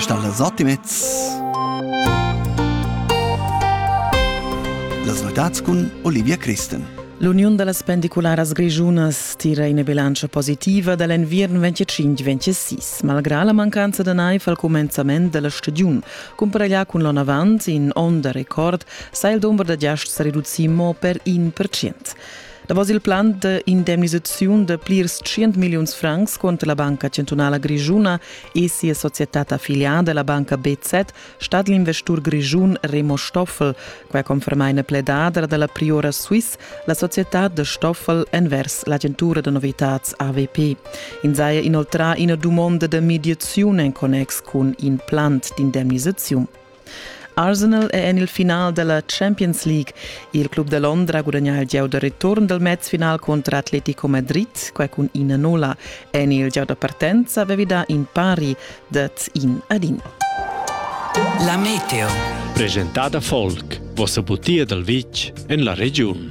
Stal las Optimets Las notads cun Olivia Christen. L'uniun da las pendicularas grischunas tira ina bilantscha positiva da l'enviern 25-26. Malgrà la mancanza da naiv al cumenzament da la stagiun, cumparaglià cun l'onn avant, in onn da record, sa il dumber da giasts sa reducir mo per in percent. Davos il plan d'indemnisaziun de plirs 100 milliuns francs contra la Banca Centrala Grischuna e sia societad affiliada, la Banca BZ, stat l'investur grischun Remo Stoffel, quai conferma ina pledadra dalla Priora Swiss, la societad de Stoffel envers l'agentura de novitads AVP. In saja inoltrà ina dumonda de mediaziun en connex cun in plan d'indemnisaziun. Arsenal è en il final della Champions League. Il club da Londra gudagnà il gieu da return dal mezfinal contro Atletico Madrid, quai cun ina nulla. En il gieu da partenza avevi dà in pari dat in ad in. La meteo. Presentada folk, vossa butia dal vitg en la regiun.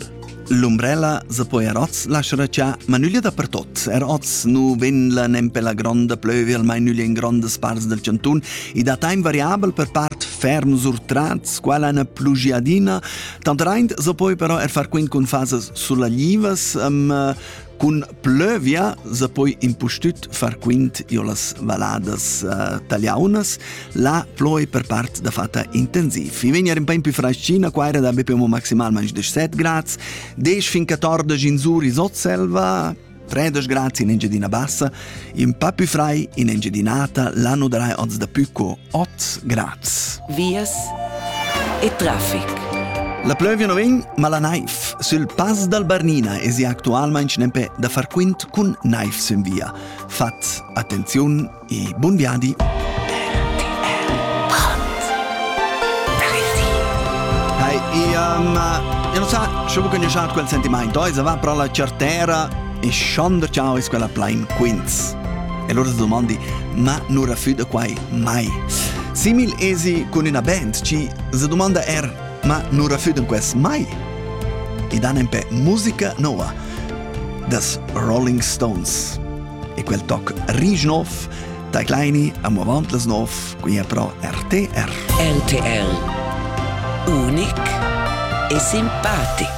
L'umbrella se po er oz laschar cha, ma nüglia dapertot. Er oz nu vegn la nempe la gronda plövia almain nüglia in grondas parts del chantun e da time variabel per part ferm surtrats, quala una plugiadina. Tant reint se poi però er far quint cun fasas sullaglivas, um, Cun plövia se poi impustüt far quint io las valadas uh, taliaunas, la ploi per part da fatta intensiv. I vegna in po più fraschina, qua era da be più maximalmente 17 gradi, 10 fin 14 in Sur i Sotselva, 13 gradi in Engiadina Bassa, in pa più frai in Engiadinata l'anno darai oz da più co Ot Graz. Vias e traffic. La plövia no vegn, ma la naiv sül Pass dal Bernina es ja actualmaing nempe da far quint cun naiv sün via. Fat attenziun e bun viadi! Hai, ia, ma... Eu non sa, sciù che ne schat quel sentimaint, oi, se va pro la certera, e schonder ciao es quella plain quints. E lura domandi, ma nu rafüda quai mai. Simil esi cun üna band ci se domanda er, ma nu rafüdan quels mai? E dan empè musica noa, das Rolling Stones. E quel toc risch nov, da kleini am avantles nov, qui a pro RTR. RTR. Unic e simpatic.